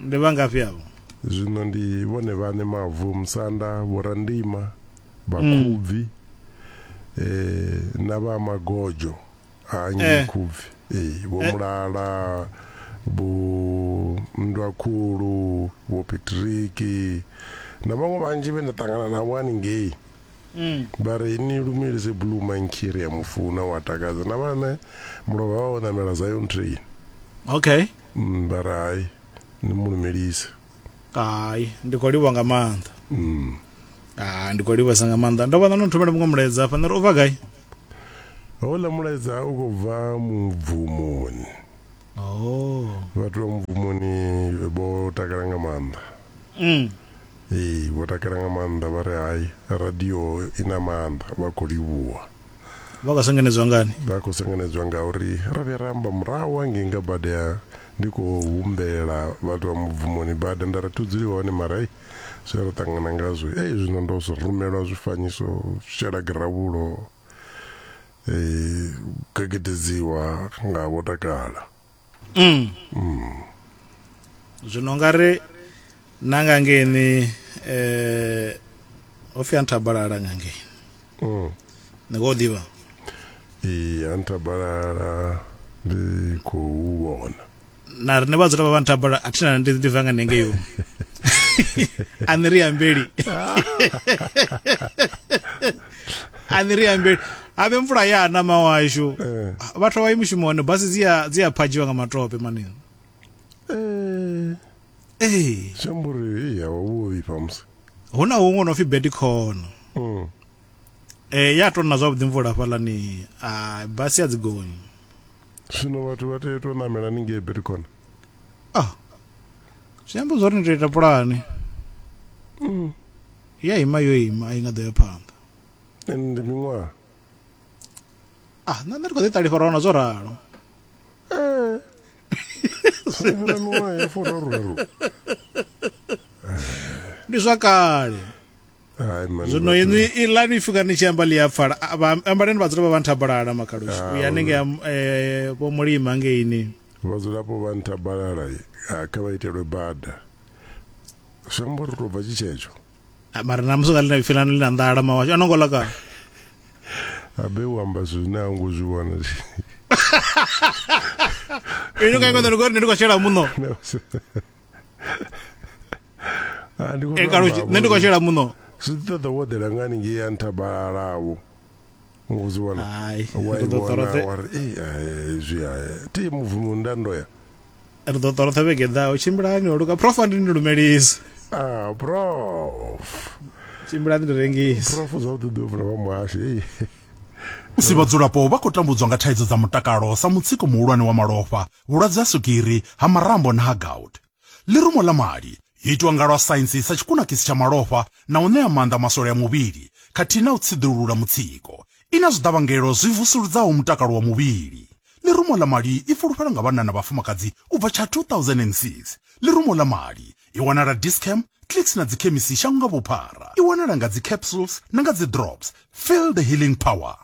Ndi vha ngafhi avho? Zwino ndi vhone vhaṋe mavu, musanda, vhorandima, vhakhubvi mm. eh, na vha magodzho a nnyi eh. khubvi eh, vho eh. mulala vho nndwa khulu vho petriki na vhaṅwe vhanzhi vhe nda ṱangana navho haningei Mm. vha ri ni lumelise blue mankiri ya mufuna wa takadza na vhane mulovha vha o namela zion train okay Mm, vha ri hai ni mu lumelise hai ndi khou livha nga maanḓa mm. ha ndi khou livhesa nga maanḓa ndo vha na no thomela muṅwe mulaedza hafha nda ri u bva gai houḽa mulaedza u khou bva mubvumoni oh. vhathu vha mubvumoni vho takala nga maanḓa mm. ee vho takala nga maanḓa vha ri hai radio i na maanḓa vha khou livhuwa vha nga sengenedzwa ngani vha khou sengenedzwa ngauri ro vhuya ra amba murahu hangei nga bada ya ndi khou humbela vhathu vha mubvumoni bada nda ri thudzuliwa hone mara ei zwe ra ṱangana ngazwo ei zwino ndo zwi rumelwa zwifanyiso shela giravulo um gegededziwa nga vho takala mm. mm. zwino nga ri na nga ngeni eh ho fi anthabalala nga ngeni mm. ni khou ḓivha i anthabalala ndi khou vhona na rine vhadzula vha vhantabala a thi na ndi ndi vanga nenge yo a ni ri ambeli a ni ri ambeli ave mvula ya na mawashu Eh. vhathu avhayi mushumoni basi dzi a- dzi a phadzhiwa nga matope mani Eh, ee shamburi ya wavhuvi pamusi hu na huṅwe no pfi bedikhono Mm. um ya tona zwavhuḓi mvula hafhalani a basi a dzi gonyi zwino vhathu vha tea u tou namela ni ngei betikona ah zwi amba zwori ni tou ita pulani I ya ima yo ima a i nga ḓo ya phanḓa. Ndi miṅwaha. Ah, nṋe ndi khou ḓi ṱalifha ra wana zwo ralo. Eh. Fhira miṅwaha ya furaru. Ndi zwa kale. zwino inwi ilani fika ni tshi amba ḽi a pfala ambaleni vhadzulapo vha nthabalala makhalushi ah, uya hanenge eh, vho mulima hangeini vhadzulapo vha nthabalala ah, kha vha itelwe bada zwi amba uri tou bva tshi tshetsho ah, mara na musi nga lina ipfi lanu ḽi na nḓala mawasho a no ngo ḽa kana abe u amba zwine a ngo zwi vhona ino ka ikoḓa lugori ne ndi khou shela muṋo ah, nṋe ndi khou shela muṋo zwi ḓi ṱoḓa wo ḓela nga haningei ya nthabalalavo ngo zwi vhona Hai, wa ri i ḓo vhona ṱoroṱhe- wa ri "Ei, eh, zwi a ti muvumo nda ndo ya ri ḓo ṱoroṱha vhege i ḓaho tshimbilani o luka prof andi ni lumelise ah prof tshimbilani ndi rengise prof zwavhuḓi ḓo vula vha muhashi ei Musi vhadzulapo vha khou tambudzwa nga thaidzo dza mutakalo sa mutsiko muhulwane wa malofha, vhulwadze ha swigiri, ha marambo na ha gout. Ḽirumo ḽa mali yo itwa nga lwa saintsi sa tshikunakisi tsha malofha na u ṋea maanḓa maswole a muvhili khathihi na u tsiḓulula mutsiko. I na zwiḓavhangelo zwi vusuludzaho mutakalo wa muvhili. Ḽirumo ḽa mali i fulufhelwa nga vhanna na vhafumakadzi u bva tsha 2006. Ḽirumo ḽa mali i wanala Dis-Chem, Clicks na dzikhemisi shango nga vhuphara. I wanala nga dzi capsules na nga dzi drops. Feel the healing power!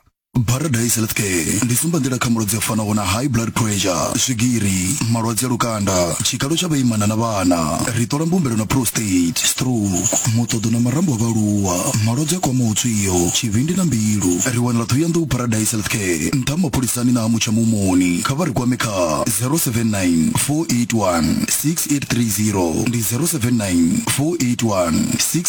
Paradise Health Care ndi tsumbanḓila kha malwadze a fanaho na high blood pressure, swigiri, malwadze a lukanda, tshikalo tsha vhaimana na vhana. Ri ṱola mbumbelo na prostate, stroke, muṱoḓo na marambo a vhaaluwa, malwadze a kwamaho tswio, tshivhindi na mbilu. Ri wanala Ṱhohoyanḓou Paradise Health Care, nṱha ha mapholisani na ha Mutsha Muhumoni. Kha vha ri kwame kha 079 481 6830 ndi 079 481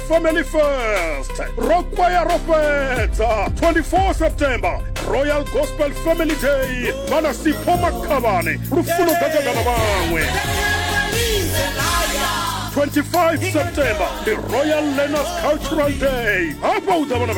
family first rokwaya ro fhedza 24 september royal gospel family day vhana sipho makhavhane lufuno gagaga na vhaṅwe 25 september ndi royal learners cultural day hafha u ḓa vhana